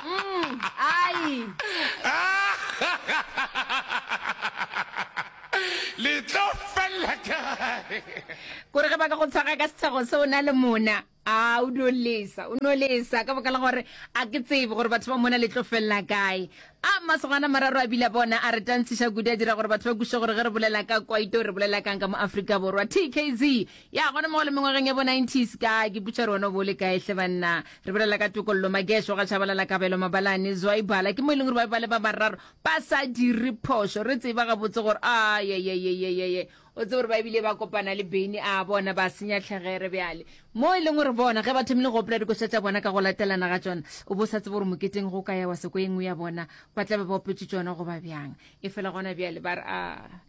mm, ai le tlo fella kae kore ge ba ka go tshwaga ka setshego se o na le mona a o no lesa o no lesa ka boka la gore a ke tsebe gore batho ba mona le tlo felela kae a masogana mararo a bile bona a re tantshiša kudu a dira gore batho ba kuse gore ge re bolela ka kwaito re bolela kang ka mo aforika borwa tkz Ya, gona mo le mengwageng ya bo nineties ka ke putša re wena bo le kae hle banna re bolela ka tokollo magesho ga tshabalala kabelo mabalane zwaibala ke mo e leng gore ba be ba le ba bararo ba sa dire phošo re tseba gabotse gore a yeyeyeyeye o tse gore ba ebile ba kopana le beny a bona ba senya tlhegere bjale mo e leng gore bona ge ba thomile go opela dikoša tša bona ka go latelana ga tsona o bo sa tsebe gore moketeng go ka ya wa seko e nngwe ya bona ba tla be ba opetse tsona go ba bjang e fela gona bjale ba re a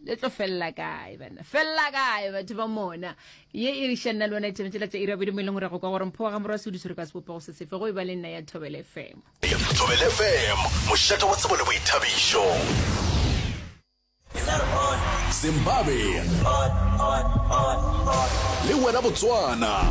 le tlo felela kae bana felela kae batho ba mona ye e re šanna le ona e tshwanetse la tsa ira bodimo e leng gore go kwa gore mpho wa ga morwa sodiso re ka sebopego se sefe go e ba le nna ya thobele fm thobele fm mošate wa tsebo le boithabišo zimbabwe le wena botswana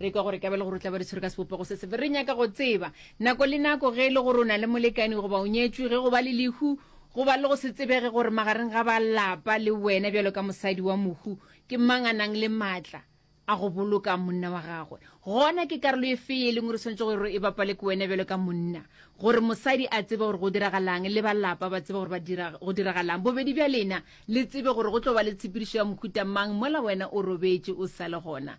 re kwa gore ka bele gore o tla ba re tshwere ka sebopego se sefe re nyaka go tseba nako le nako ge e le gore o na le molekani goba o nyetswe ge go ba le lehu go ba le go se tsebege gore magareng ga ba lapa le wena bjalo ka mosadi wa mohu ke mang a nang le maatla a go boloka monna wa gagwe gona ke karolo e fe e leng gore tshwanetse gore e bapale ke wena bjalo ka monna gore mosadi a tsebe gore go diragalang le balapa ba tsebe gore go diragalang bobedi bja lena le tsebe gore go tlo ba le tshepedišo ya mohuta mang mola wena o robetse o sa le gona